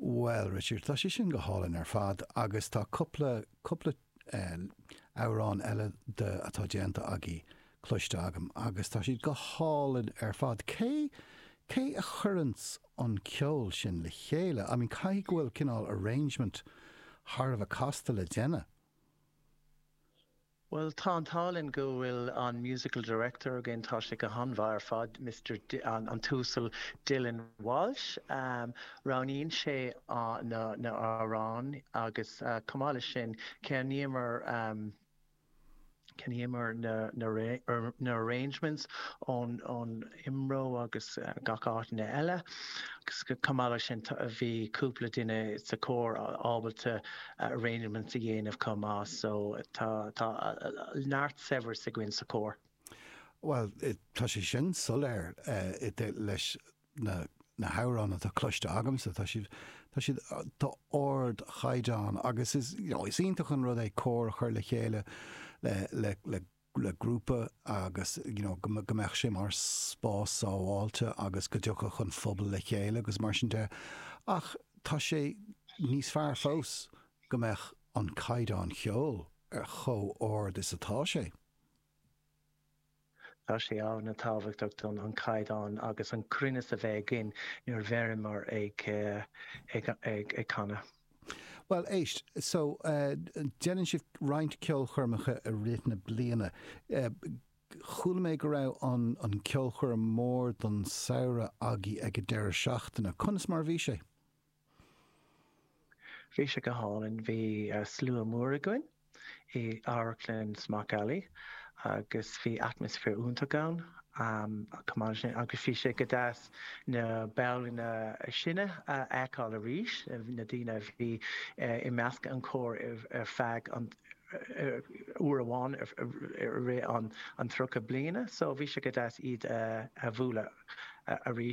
Bhuel, Richard, tá sé sin go hálainn ar fad agus tá cúpla, cúpla amhrán eile de atá déanta agaí cloiste agam agus tá siad go hálainn ar fad. Cé, cé a chuireanns an ceol sin le chéile? I mean, caithfidh go bhfuil cineál arrangement thar a bheith casta le déanamh. Bhuel, tá an t-ádh linn go bhfuil an Musical Director againn, tá sé go han-mhaith ar fad, Mister, an tUasal Dylan Walsh. Roghnaíonn sé na hamhráin agus chomh maith leis sin, ceannaímid, ceannaímid na, na, na arrangements ón, ón, IMRO agus gach áiteanna eile. Chomh maith leis sin, bhí cúpla duine sa chór ábalta arrangements a dhéanamh chomh maith so tá tá neart saibhreas againn sa chór. Bhuel, tá sé sin soiléir leis na hamhráin atá cloiste agamsa, tá siad d'ardchaighdeán agus is is iontach an rud é cór a chur le chéile le le grúpa agus you know go go mbeadh sé mar spás sábháilte agus go dtiocfadh an pobal le chéile agus mar sin de ach tá sé níos fearr fós go mbeadh an caighdeán ceoil ar chomh ard is atá sé. Tá sé an-tábhachtach dúinn an caighdeán agus an cruinneas a bheith againn nuair a bhíonn muid ag ag ag canadh. Bhuel, éist, so, déanann sibh roinnt ceolchoirmeacha i rith na bliana. Chuala mé go raibh an cheolchoirm mhór don samhradh agaibh ag an deireadh seachtaine. Conas mar a bhí sé? Bhí sé go hálainn. Bhí slua mór againn. i amharclann Smock Alley agus bhí atmaisféar iontach ann agus bhí sé go deas na baill níos sine a fheiceáil arís, na daoine a bhí i measc an chóir ar feadh an uair amháin i rith an tríocha bliana so bhí sé go deas iad a bhualadh arís.